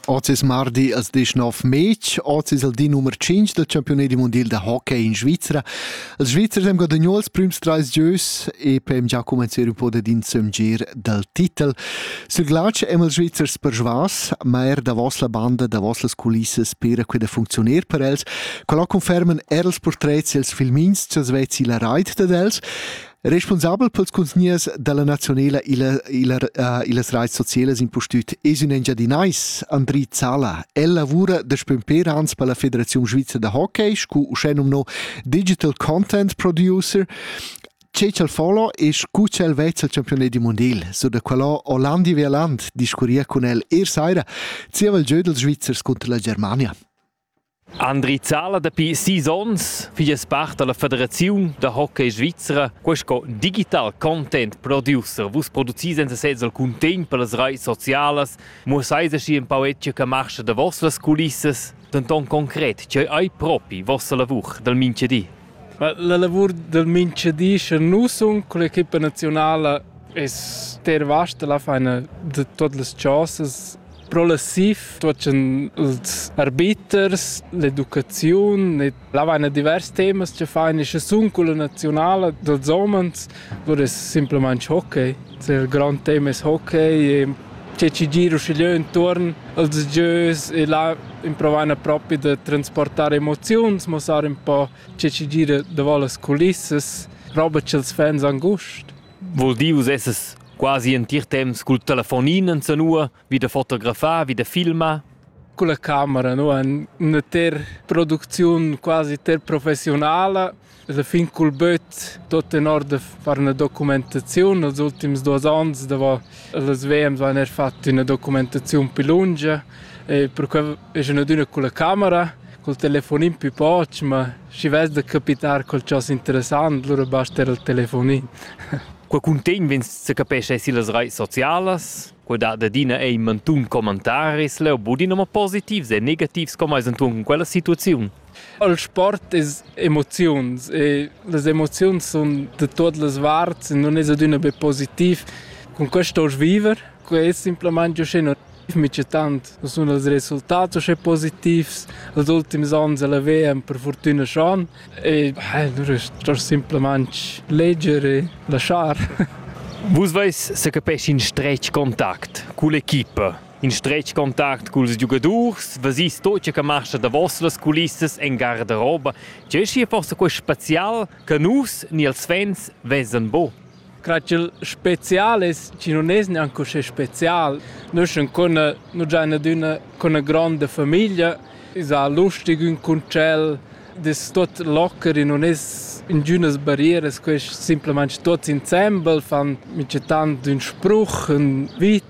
Oz es mardi als 19 mez, oz es il di nummer 5 del campiunedi mondial da hockey in Svizra. Els Svizzers haben guadagnato els prüms trais gieus e per già comenziere un po' ad insömgir dal titel. Sul glatsch haben els Svizzers persuas, ma er davos la banda, davos las culissas pera que da funzioner per els. Quella conferman er els portrets e els filmins, ch'els vezzi la rait dad els. Responsabel pels cunzgniers da la nazionela illa, illa, uh, illas raits socielas impustüt es ün Engiadinais, Andri Zala. El lavura daspö ün pêr ans per la Federaziun Svizra da hockey scu uschè nomno Digital Content Producer Che ch'el folo es cu ch'el vezza il campiunat di mondial. So da quellò Hollandi Veland discurria cun el er saira zieva il giö dels Svizzers cunter la Germania. Andri Zala dapi sis onns figlia part dalla federaziun da hockey svizra. Quei sco digital content producer. Vus producis senza sez alcun temp per las reis socialas. Muossai aschi empau etge che marscha davos las culissas, denton concret, tgei ei propi vossa lavur dal mintgadi? Ma la lavur dal minchadi scha nu sun culla equipa naziunala es ter vasta, la faina da tuot las chosas progressiv, tuot cun ils arbiters, l'educaziun e là vaina divers temas cha fain e scha sun culla naziunala dals homens, lur es simplamaing hockey. Il grand tema es hockey e tgi gir uschigliö intuorn als gieus e là improvaina propi da transportar emoziuns, muossar ün po che chi gira davo las culissas, roba cha'ls fans han gust. Voul dir, vus essas quasi entir temps cul telefonin insanua, vi da fotografar, vi da filmar? Con la camera, no? Üna ter producziun quasi ter professionala Esa fin cul böt tuot tenor da far üna documentaziun. Nels ultims duos ans davo las VM vain eir fat üna documentaziun pi lungia e perquai esa ün adüna culla camera, cul telefonin pü poch, ma schi vess da capitar qualchosa interessant lura basta eir il telefonin. Quel cuntegn vegn se capescha eir illas raits socialas. Quel dat adina ei mantun commentaris, leu budin ama positivs e negativs, com ais intuorn cun quella situaziun. El sport es emoziuns e las emoziuns sun da tuot las varts e nun es adüna be positiv. Cun que stoust viver, quai es simplamaing uschè negativ mica tant. Nu sun els resultats uschè positivs als ultims ans a la VM per furtüna schon e nu stost simplamaing leger e laschar. Vus vais se capescha in stretg contact cull'equipa. In stretg contact culs giugadurs vesis tot che marcha davos las culissas en garderoba. Tgei schi forsa quei special che nus ni els fans vesan bo? Grazchel specialis chi nun es gnanc uschè special. Nus ün cun nu già adüna cun üna gronda famiglia, es a lustig ün cun tschel, das tuot locker e nun es ingünas barrieras, quest simplamaing tuots insembel fan mica tant ün spruch, ün vit.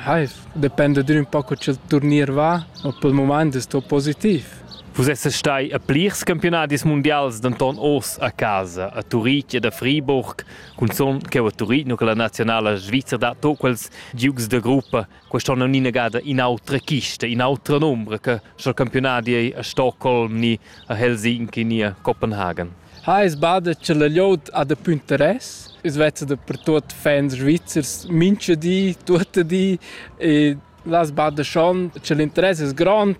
Haiv, dependa d'ün ün po co cha'l turnier va, ma pel mumaint es sto positiv. Vus essas stai a plirs campiunadis mundials, denton oz a casa, a Turitg ed a Friburg, cunzun cheu a Turitg, nu che la nazionala svizra dat tot quels giugs da gruppa. Quest'onn non innegada in'autra chista, in'autra nombra che sch'el campiunadi ei a Stockholm ni a Helsinki ni a Copenhagen. Ha eis bada cha la glieud ha daplü interess. I's vezza dapertuot fans svizzers mincha di, tuotta di e las bada schon cha l'interess es grond,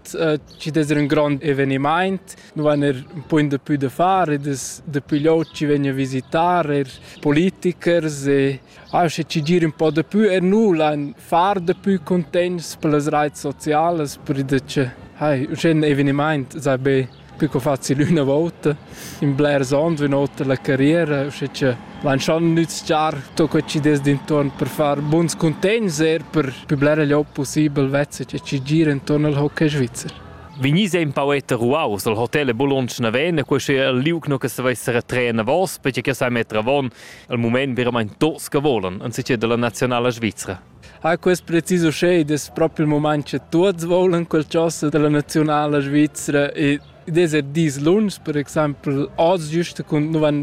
chi'd es ün grond evenimaint. Nu vain eir ün punt dapü da far ed es daplü glieud chi vegn a visitar, eir politikers e auncha chi gir ün po dapü. Er nu lain far dapü cuntegns per las raits socialas perche cha hai, uschè ün evenimaint sai be Più co facil üna vouta. In blers ons, üna otra la carriera, usche cha vain schon nüzchar tot que chi dess d'intuorn per far buns cuntegns eir per pü blera glieud pussibel vezza cha chi gira intuorn al hockey svizzer. Vegnis ein paueta ruaus al hotel e Bologna naven e questo è il liug no che se vesse retraen a vos perché che sai metter avon al moment veramente tots che volen anziché della nazionale svizzera. Ha quest precis uschè id es propi il mumaint cha tuots voulan qualchosa da la naziunala svizra ed id es er dis lungs, per exaimpel oz güst cun nu van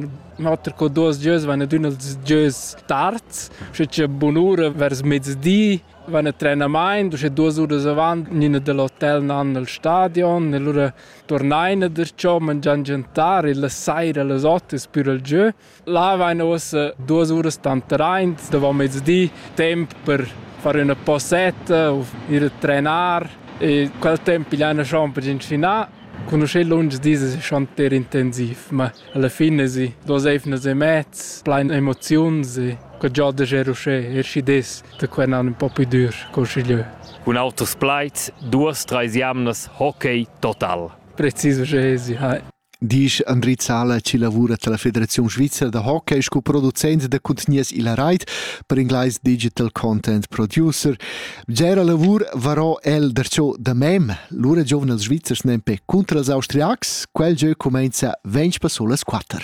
oter co duos gieus van ad ün als gieus tards, uschè cha bunura vers mezdi van a trenamaint, uschè duos uras avant gnina da l'hotel nan al stadion e lura turnaina darcho, mangian giantar e la saira a las ot es pür al giö. Là vain uossa duos uras tantraint davo mezdi, temp per far üna posetta u ir a trenar e quel temp pigliaina schon per inschinà. Cun uschè lungs dis es schon ter intensiv, ma alla fin esi duos eivnas e mez plain emoziuns e que giò da ger uschè, er schi des da quel an ün po plü dür col schigliö. Cun auters plaids, duos, trais jamnas, hockey total. Precis uschè esi, hai. disch Andri Zala chi lavura tilla Federaziun svizra da hockey sco producent da cuntgnias illa rait, per inglais Digital Content Producer. Bgera lavur varò el darcho da mem. Lura giovnels svizzers nempe cunter els austriacs, quel gieu cumainza ventg passolas quatter.